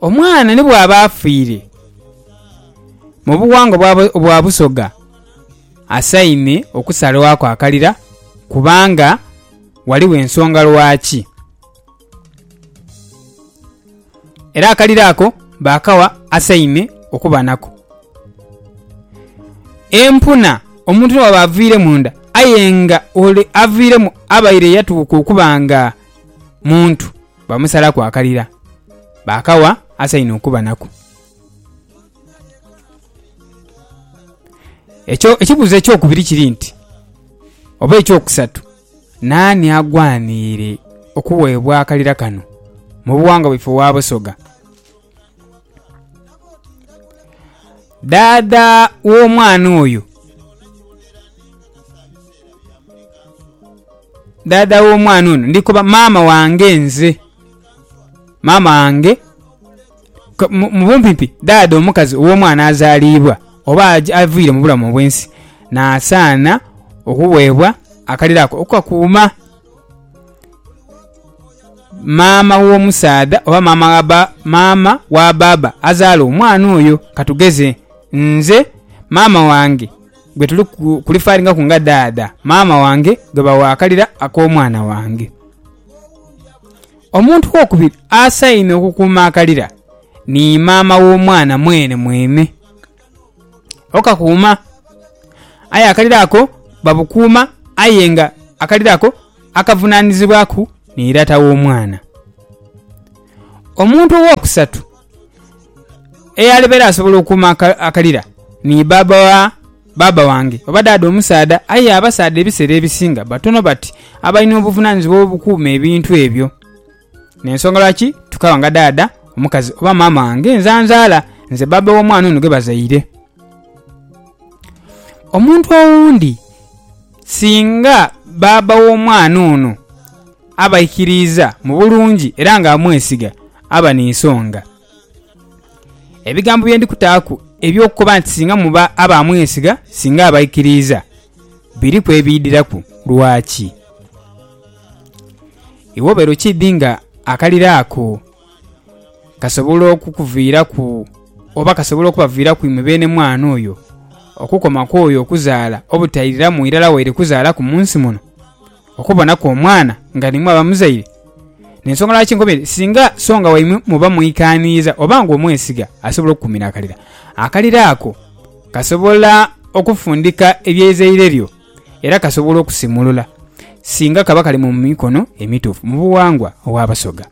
Omwana ni bw'aba afiire mu bughangwa bwa Busoga asaine okusalwaku akalira kubanga ghaligho ensonga lwaki. Era akalira ako baakagha asaine okuba nako. Empuna omuntu ni bwaba aviiremu nda aye nga ole aviiremu abaire yatuuka okuba nga muntu. Bamusalaku akalira, baakawa asainhe okuba nako. Ekyo, ekibuuzo eky'okubiri kiri nti, oba eky'okusatu, naani agwaniire okuweebwa akalira kano mu buwangwa bwaife obwa Busoga? Dhaadha w'omwana oyo, dhaadha w'omwana ono ndi koba maama wange nze. Maama wange, mu bumpimpi dhaadha omukazi ow'omwana azaliibwa oba avaire mu bulamu obw'ensi, naasaana okuweebwa akalero ako okukakuuma. maama w'omusaadha oba maama wa ba, maama wa baaba azaala omwana oyo. Ka tugeze nze maama wange gwe tuli ku- kulifairingaku nga dhaadha, maama wange gwe bawa akalira ak'omwana wange. Omuntu wokubiri asainire okukuuma akalira ni maama w'omwana mwenemwene. okakuuma. Aye akaliro ako babukuuma aye nga akaliro ako akavunanizibwaku ni irata w'omwana. Omuntu owokusatu eyali beera asobola okuuma akalira ni baaba wa baaba wange oba daada omusaadha. Aye abasaadha ebiseera ebisinga batono bati abalina obuvunanizibwa obukuuma ebintu ebyo. N'ensonga lwaki tukaaba nga dhaadha omukazi oba maama wange nzanzaala nze bbaabba w'omwana ono gwe bazaire. Omuntu owundi singa bbaabba w'omwana ono aba aikiriiza mu bulungi era nga amwesiga, aba ni nsonga. Ebigambo bye ndi kutaaku eby'okukoba nti singa muba aba amwesiga, singa aba aikiriiza, biriku ebiidhiraku. Lwaki? Iwe obeera okiidhi nga akalira ako kasobola okukuviiraku oba kasobola okubaviiraku imwe beene mwana oyo okukoma ku oyo okuzaala obutairiramu irala waire kuzaalaku mu nsi muno, okubonaku omwana nga nimwe abamuzaire. N'ensonga lwaki nkoba enti singa songa waimwe muba mwikaaniiza oba nga omwesiga asobola okukuumira akalira. Akalira ako kasobola okufundika ebya izaire lyo. era kasobola okusimulula singa kaba kali mu mikono emituufu mu buwangwa obw'Abasoga.